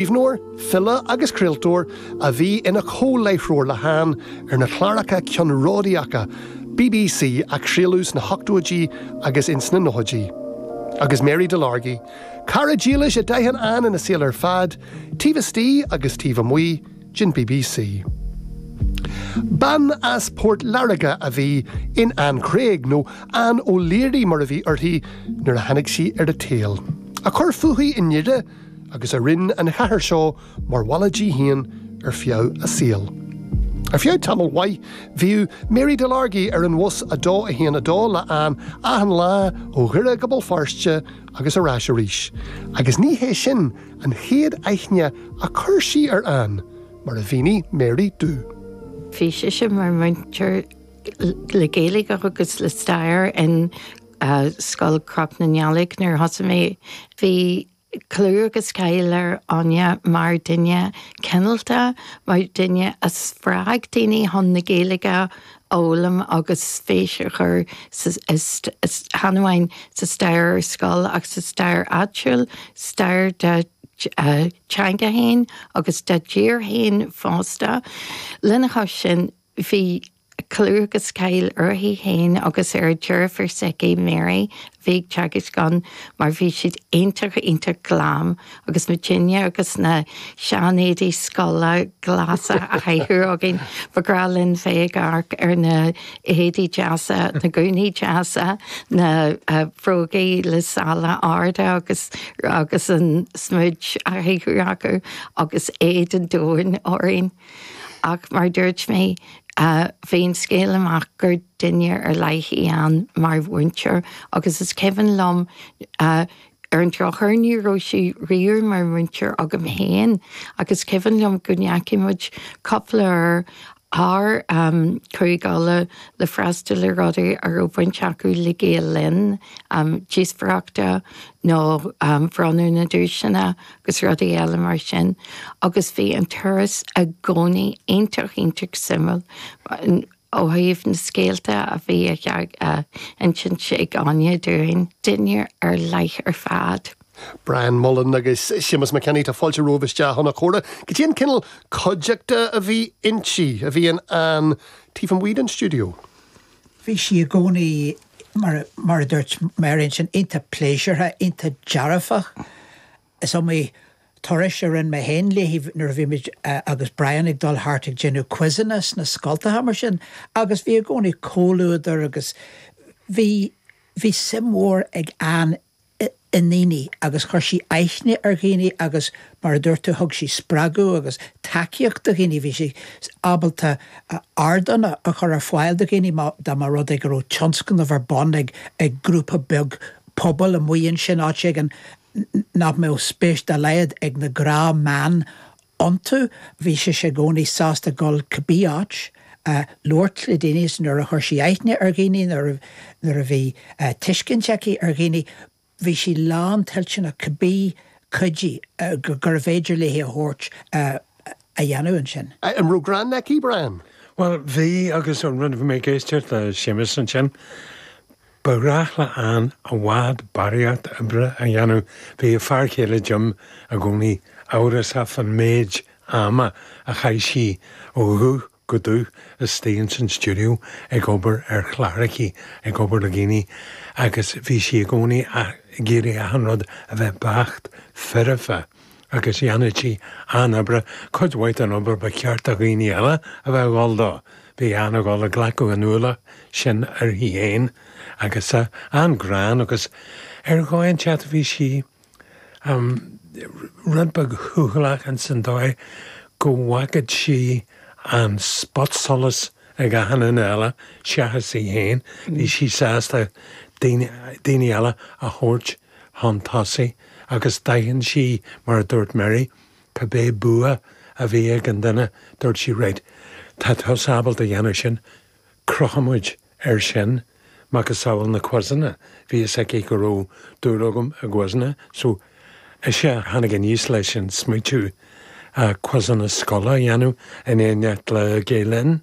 Scríbhneoir, file agus craoltóir a bhí ina chomhláithreoir le hÁine ar na cláracha ceannródaíocha bbc a craoladh sna hochtóidí agus ins na nóchaidí. Agus Mary Delargy, cara dílis a d'aithin Anne ina saol ar fad, taobh istigh agus taobh amuigh den bbc. Bean as Port Láirge a bhí in Anne Craig, nó Anne O'Leary mar a bhí uirthi nuair a tháinig sí ar an tsaol, a chuir fúithi i nDoire, agus a rinne an chathair seo mar bhaile di féin ar feadh a saoil. Ar feadh tamaill mhaith, bhíodh Mary Delargy ar an bhus 2 1 2 le Anne achan lá ó Dhoire go Béal Feirste agus ar ais arís, agus ní hé sin an chéad aithne a chuir sí ar Anne, mar a mhínigh Mary domh. Bhí sise mar mhúinteoir le Gaeilge agus le Stair in. Scoil Chnoc na nDealg nuair a thosaigh mé. Bhí clú agus cáil ar Anne mar dhuine cineálta, mar dhuine a spreag daoine chun na Gaeilge a fhoghlaim agus spéis a chur chan amháin sa stair ar scoil ach sa stair áitiúil, stair dá dteanga féin agus dá dtír féin fosta. Lena chois sin, Bhí clú agus cáil uirthi féin agus ar a deirfiúr s'aici, Mary, a bhí ag teagasc ann, mar bhí siad iontach, iontach glam agus muidinne agus na seanéadaí scoile glasa á chaitheamh againn, ba bhreá linn bheith ag amharc ar na héadaí deasa, na gúnaí deasa, na brógaí le sála arda agus agus an smid á chaitheamh acu agus éad an domhain orainn. Ach mar dúirt mé, bhí an scéal amach gur duine ar leith í Anne mar mhúinteoir agus is cuimhin liom, ar an drochuair, ní raibh sí riamh mar mhúinteoir agam féin, ach is cuimhin liom go ndeachaigh muid cúpla uair thart ar Chúige Uladh le freastal ar rudaí a raibh baint acu le Gael Linn, díospóireachta nó bronnadh na duaiseanna agus rudaí eile mar sin, agus bhí an turas i gcónaí iontach, iontach suimiúil ó thaobh na scéalta a bhí le hinsint ag Anne dúinn. Duine ar leith ar fad. Brian Mullen agus Séamus Mac Aoidh, tá fáilte romhaibh isteach chun an chomhrá. Caidé an cineál cuideachta a bhí inti, a bhí in Anne taobh amuigh den stiúideo? Bhí sí i gcónaí, mar a dúirt Mary ansin, iontach pléisiúrtha, iontach dearfach. Is iomaí turas a rinne mé féin léi nuair a bhí muid agus Brian ag dul thart ag déanamh quizeanna sna scoltacha mar sin agus bhí i gcónaí comhluadar agus bhí suim mhór ag Anne i ndaoine agus chuir sí aithne ar dhaoine agus mar a dúirt tú thug sí spreagadh agus tacaíocht do dhaoine, bhí sí ábalta ardán a chur ar fáil do dhaoine má dá mba rud é go raibh tionscnamh ar bun ag grúpa beag pobail amuigh ansin, áit éigin nach mbeadh spéis dá laghad ag na gnáthmheáin iontu. Bhí sise i gcónaí sásta gabháil cibé áit a labhairt le daoine, is nuair a chuir sí aithne ar dhaoine, nuair a bhí tuiscint aici ar dhaoine, bhí sí lántoilteanach cibé cuidiú gurbh fhéidir léi a thabhairt a dhéanamh. Ansin. An raibh greann aici, Brian? Bhuel, bhí agus nuair a bhí mé ag éisteacht le Séamus ansin. Ba ghnách le Anne i bhfad barraíocht oibre a dhéanamh, bhí a fear céile Jim i gcónaí amhrasach faoin méid ama a chaith sí ó dhubh go dubh istigh ins an stiúideo ag obair ar chláracha, ag obair le daoine agus bhí sí i gcónaí ag iarraidh achan rud a bheith beacht foirfe. Agus dhéanfadh sí an obair, cuid mhaith den obair ba cheart do dhaoine eile a bheith ag dhul do. Bhí Anne ag dhul ag glacadh an ualach sin uirthi féin agus an-ghreann agus ar dhóigh inteacht bhí sí rud beag cúthaileach in san dóigh go bhfágadh sí an spotsolas ag achan duine eile seachas í féin. Bhí sí sásta daoine eile a thabhairt. chun tosaigh agus d'aithin sí, mar a dúirt Mary, cibé bua a bhí ag an duine, dúirt sí, right, tá tusa ábalta a dhéanamh sin, cuirfimid air sin, macasamhail na quizeanna, bhí fhios aici go raibh dúil agam i gquizeanna, so is í a tháinig aníos leis an smaointiú quizeanna scoile a dhéanamh in éineacht le Gael-Linn